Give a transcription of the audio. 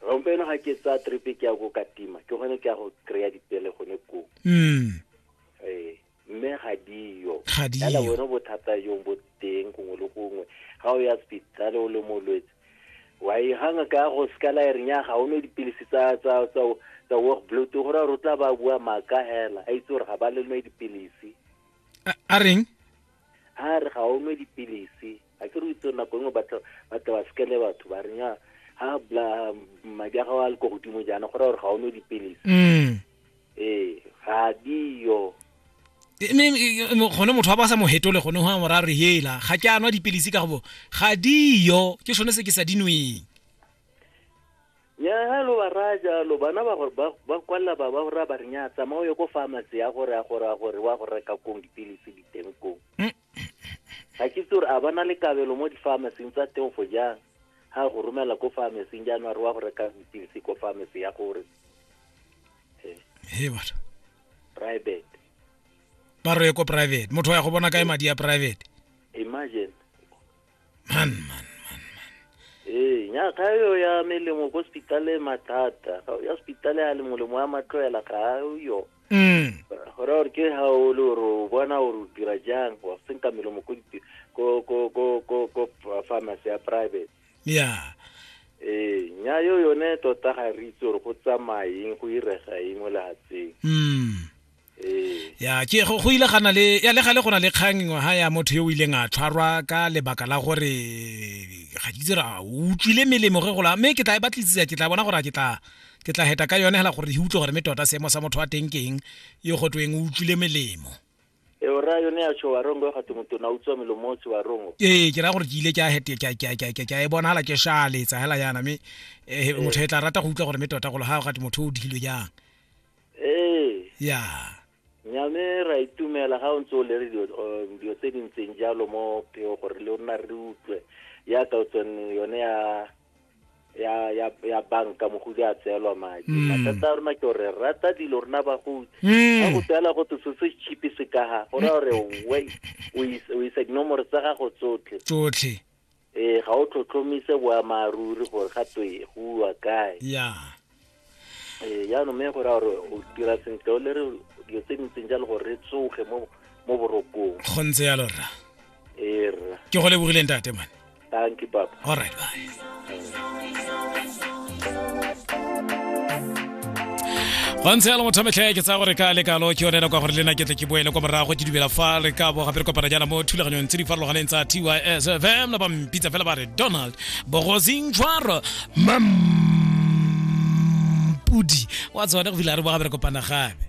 rompeno ga ke tsaya tripe ke ya ko katima ke gone ke ya go kry-a dipele gone koo mm. ee mme ga diyo fela bone bothata jong bo teng gongwe le gongwe ga o ya spitale o le molwetse wa e ganga ka go sekala e renya ga o ne dipilisi tsa tsa tsa tsa work blood go ra rutla ba bua maka hela a itse gore ga ba le nwe dipilisi a reng a re ga o nwe dipilisi a ke re itse nako engwe batla batla ba sekele batho ba re nya ha bla madi a gago a le ko godimo jaana go raya gore ga o nwe dipilisi mm. ee ga diyo gone motho wa ba sa mo hetole gone go a mora re hela ga ke a nwa dipilisi ka gobo ga diyo ke sone se ke sa dinweng nya ha lo ba raya jalo bana ba gore ba- ba kwalela ba ba gore ba re nya tsamao ye ko pharmacy ya gore ya gore ya gore wa go reka kong dipilisi diteng kong ga ke itse gore a ba na le kabelo mo di-pharmacing tsa teofo jang ga go romela ko pharmacing jaanong a re wa go reka dipilisi ko pharmacy ya gore he batho private ba roye ko private motho wa ya go bona kae madi ya private imagine man man man man ee nya ga yo ya melemo ko hospitale mathata ga ya hospitale ya le molemo wa matloela ga yo mm go ra gore ke ga o le gore o bona gore o dira jang wa senka melemo ko dipi- ko ko ko ko ko pharmacy ya private yeah ee nya yo yone tota ga re itse gore go tsamaeng go irega eng mo lehatseng mm ya ke go go ile gana le ya le gale go na le kgang ngwe ha ya motho yo o ileng a tshwarwa ka lebaka la gore ga ke dira o utlwile melemo ge gola mme ke tla e batlisisa ke tla bona gore ke tla ke tla heta ka yone hela gore di utlwe gore me tota seemo sa motho wa teng ke eng yo go tweng o utlwile melemo e o ra yone ya tsho wa rongo ga tumutu na utswa melomo tswa wa rongo ee ke ra gore ke ile ke a hete ke ke ke ke e bona hala ke shale tsa hela yana me eh, motho e tla rata go utlwa gore me tota go le ha ga tumutu o dilo jang ee ya nyame ra itumela ga o ntse o le re dilo o- dilo tse di ntseng jalo mo pheo gore le rona re utlwe yaka o tsone yone ya ya ya ya banka mogodi a tseelwa madi Mm. mathata a rona ke gore re rata dilo rona bagodi ga go Mm. tsela go tse se chipi se kaga go raya gore we o is- o isa dinomoro tsa gago tsotlhe tsotlhe ee ga o tlhotlhomise boamaaruri gore ga twe go uwa kae ya ee jaanong mme gore gore o dira sentle o le re dilo tse dintseng jalo gore re tsoge mo mo borokong go ntse jalo rra ee rra ke go lebogileng tate mane thank you papa all right bye go ntse yalo motho metlhe ke tsaya gore ka le kalo ke yonela kwa gore le na ke tle ke boele kwa morago ke dumela fa re ka bo gape re kopana jaana mo thulaganyong tse di farologaneng tsa tys fm na ba mpitsa fela ba re donald bogosing tshwaro mampudi wa tsone go fila re bo gape re kopana gape